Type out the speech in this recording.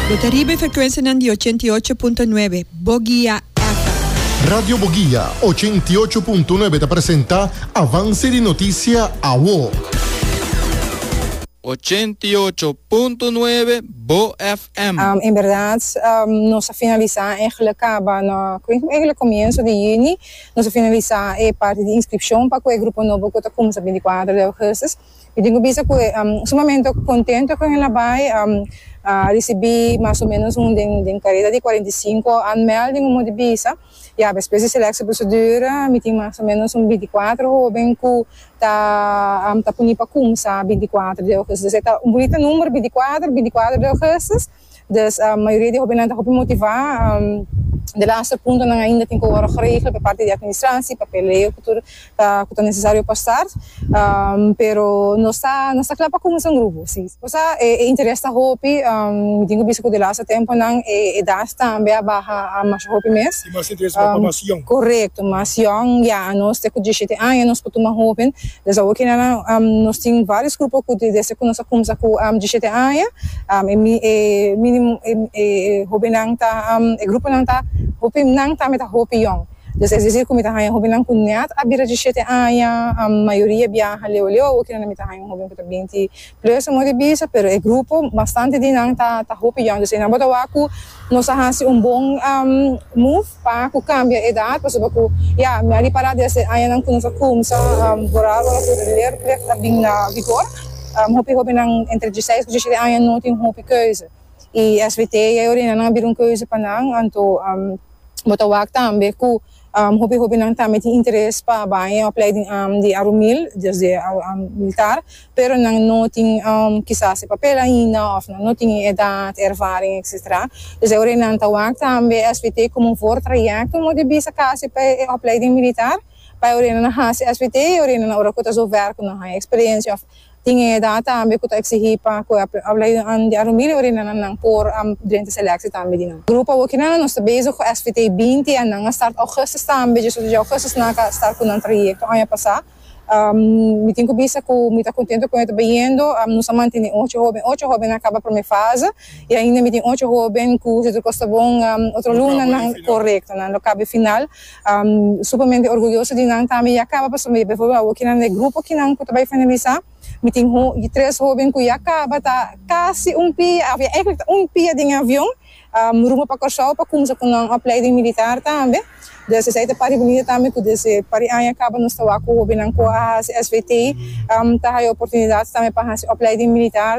Bo ta riba e frekuensianan di ochenta i ocho punto nuebe Bogia FM. Radio Bogia ochenta i ocho punto nuebe ta presenta Avanse di Notisia Awo. Ochenta i ocho punto nuebe Bo FM. En berdad nos a finalisa e egle kaba na kuintu egle komienso di yuni nos a finalisa e parti di inskripshon pa ku e grupo nobo ku ta kumsa binti kuater di augustus. I tin ku bisa ku e sumamento kontento ku henda bai. A risibí mas o ménos un den kareda di kuarenta i sinku anmèlding un monti bisa. Ya despues di selèksio proseduur mi tin mas o ménos un binti kuater hóben ku ta ta puni pa kumsa binti kuater di ougùstus. Esei ta un bunita nùmber, binti kuater, binti kuater di ougùstus. Dus mayoria di hobennan ta hopi motivá. De laatste puntonan ainda tin ku wòrdu geregel pa parti di atministrasie, papeleo ku tur ku ta nesesario pa start. Pero nos ta nos ta kla pa kuminsá un grupo, sí. Kusá e interes ta hopi, mi tin ku bisa ku de laatste tempunan e edas tambe a baha masha hopi mes. i mas e tres mai pa mas young. Korekto, mas young, ya anos te ku dishete aña nos por tuma hoben, des awo kina nan nos tin varios grupo ku desde ku nos a kumsa ku dishete aña e mi e minimo e hobennan ta e gruponan ta hopi nan tambe ta hopi young des es desir ku mi ta haña hobennan ku nèt a bira dishete aña mayoria biaha leu leu awo kina nan mi ta haña un hoben ku ta binti Lo es moe di bisa, pero e grupo bastante di nan ta ta hopi young, dus esnan bo ta wak ku nos a hasi un bon move pa ku kambia edat, pasobra ku ya mi a ripará desde añanan ku nos a kumsa borar ora ku leerplicht a bin na vigor, hopi hóbennan entre diesseis ku diesshete aña no tin hopi keuze i svt ya e orina nan a bira un keuze pa nan, anto bo ta wak tambe ku Hopi hopinan tambe tin interes pa bay e opleiding di arumil, dus di militar, pero nan no tin kisas e papel ainda of nan no tin e edat, e ervaring, etc. Dus e ora nan ta wak tambe SVT komo un voortraject un moda bisa kasi pa e opleiding militar, bay ora nan a hasi SVT y ora nan ora ku ta zo werk ku nan haya experiencia. Tin e edat tambe ku ta eksihí pa ku e aplaidónan di Arumbi loke di nan nan por a drenta seleksi tambe di nan. Grupo awoki nan nos ta bezig ku SVT binti en nan a start Ougustus tambe dje susu dje Ougustus nan a ka start ku nan trayekto aña pasá. Mi tin ku bisa ku mi ta kontentu kon e ta bayendo. Nos a mantene ocho hóben, ocho hóben nan a kaba promé fase i ainda mi tin ocho hóben ku si tur kos ta bon otro luna nan korekto nan lo kaba e final. Supermente orguyoso di nan tambe ya kaba pasobra por eempel awo kinan den grupo kinan ku ta bai efangelisá mi tin tres hóben ku ya kaba ta kasi un pia òf ya èigelik ta un pia den e avion rumbo pa Kòrsou pa kuminsá ku nan opleiding militar tambe dus esei ta parti bunita tambe ku desde par di aña kaba nos ta wak ku hóbennan ku a hasi svt ta haya oportunidat tambe pa hasi opleiding militar.